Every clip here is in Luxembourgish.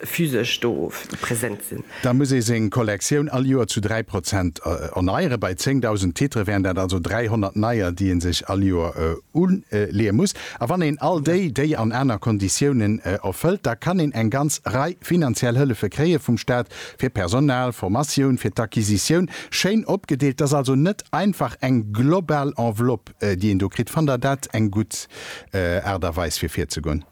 physesch do present sinn. Da muss ee seng Kollektioun all Joer zu 3 Prozent erneieren. Bei 10.000 Titre wären dat also 300 neier, déi ee sech all Joer uleeë muss. A wann een all déi, déi an aner Konditiounen erfëllt, da kann een eng ganz Rei finanziell Hëllefe kréie vum Staat, fir Personal, Formatioun, fir d'Acquisitioun, schéin opgedeelt. Dat ass also net einfach eng global Enveloppe, déi een do kritt. Fannt Der dat eng gutt Aart a Weis, fir virzegoen?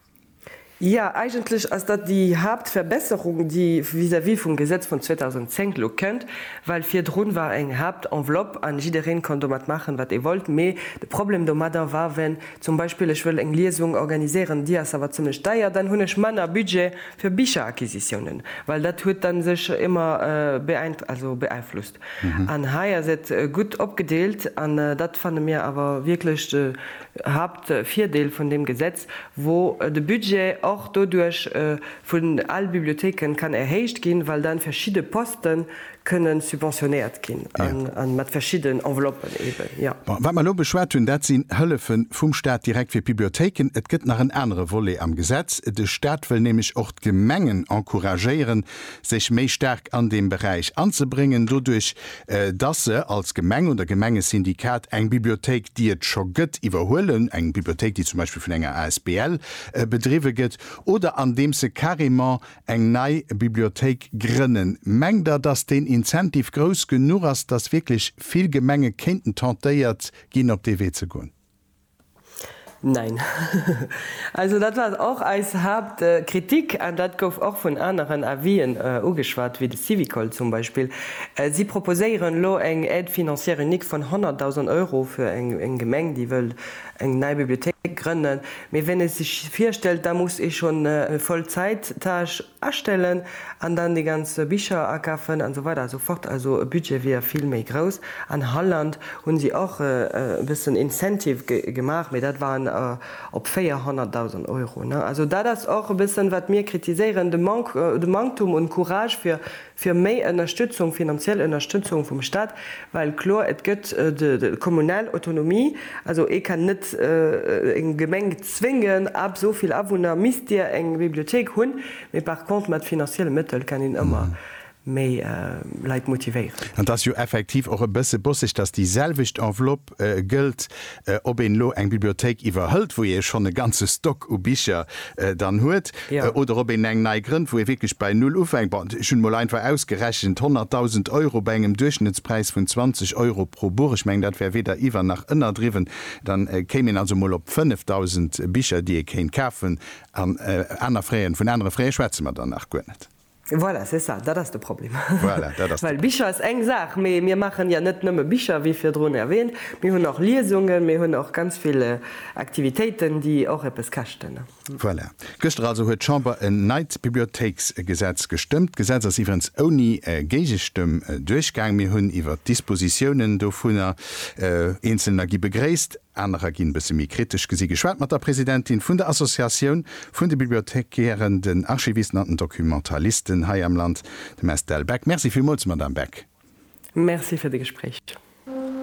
Jo, eigentlech ass dat déi Haaptverbesserung, déi vis-à-vis vum Gesetz vun 2010 elo kënnt, well virdrun war eng Haaptenveloppe an jiddereen konnt domat maachen, wat ee wollt. Mee de Problem domadder war, wenn zum Beispill ech wëll eng Liesung organiséieren, déi ass awer zimlech deier, dann hunn ech manner Budget fir Bicheracquisitiounen, well dat huet da sech ëmmer beeinflusst. An hei ass et gutt opgedeelt an dat fanne mir awer wierklech de Haapt. De Virdeel vun deem Gesetz wor de Budget och doduerch vun al Bibliothéike kann erhéicht ginn, well dann verschidde Posten kënnen subventionéiert ginn an mat verschidden Enveloppen eben, jo. Bon, wat mer elo beschwat hunn, dat sinn Hëllefe vum Staat direkt fir d'Bibliothéiken. Et gëtt nach en anere Volet am Gesetz. De Staat wëll nämlech och d'Gemengen encouragéieren, sech méi staark an deem Beräich anzebréngen. Doduerch dass se als Gemeng oder Gemengesyndikat eng Bibliothéik, déi et scho gëtt, iwwerhuelen, eng Bibliothéik, déi zum Beispill vun enger asbl bedriwwe gëtt, oder andeems se carrément eng nei Bibliothéik grënnen. Mengt Der, dass deen Incentive grouss genuch ass, dass wierklech vill Gemenge kéinten tentéiert ginn, op dee Wee ze goen? Nein. Also dat war och eis Haaptkritik an dat gouf och vun aneren Avis'en ugeschwat, wéi de Syvicol zum Beispill. Si proposéieren elo eng Aide financière unique vun 100.000 Euro fir eng Gemeng, déi wëll eng nei Bibliothéik grënnen. Mee ween ee sech virstellt, da muss ee schonn e Vollzäit-Tâche, Astellen an dann déi ganz Bicher akafen an esou weider an esou fort. Also e Budget wier vill méi grouss. An Holland hunn si och e bëssen Incentive gemaach, mee dat war op 400.000 Euro. Also dat ass och e bëssen, wat mir kritiséieren, de Manktum un Courage fir fir méi Ënnerstützung, finanziell Ënnerstützung vum Stat, well kloer et gëtt de kommunal Autonomie, also ee kann net eng Gemeng zwéngen, ab esou vill Awunner misst dir eng Bibliothék hunn, mee par contre mat finanzielle Mëttel kann een ëmmer méi Leit motivéieren. An et ass jo effektiv och e bësse bosseg, dass déi selwecht Envelopp Job gëllt, ob een elo eng Bibliothéik iwwerhëlt, wou ee schonn e ganze Stock u Bicher dann huet, oder ob een eng nei grënnt, wou ee wierklech bei Null ufänkt. Bon, ech hunn emol einfach ausgerechent, 100.000 Euro bei engem Duerchschnëttspräis vun 20 Euro pro Buch, ech mengen, dat wär weder iwwer nach ënnerdriwwen, da kéim een also emol op 5.000 Bicher, déi ee kéint kafen. An aner Frais, vun anere Fraise schwätze mer dann nach guer net. Voilà, c'est ça, dat ass de Problem. Voilà, dat ass de. Well Bicher ass eng Saach, mee mir maachen jo net nëmme Bicher, wéi virdrun erwähnt. Mir hunn och Liesungen, mir hunn och ganz vill Aktivitéiten, déi och eppes käschten. Voilà. Gëschter also huet d'Chamber en neit Bibliothéiksgesetz gestëmmt. D'Gesetz ass iwwerens ouni Géigestëmm duerchgaang. Mir hunn iwwert d'Dispositiounen dovunner eenzelner gi begréisst. Anerer ginn e bësse méi kritesch gesi geschwat mat der Presidentin vun der Associatioun vun de Bibliothekären, den Archivisten an den Documentalisten hei am Land, dem Estelle Beck. Merci villmools, Madamm Beck. Merci fir de Gespréich.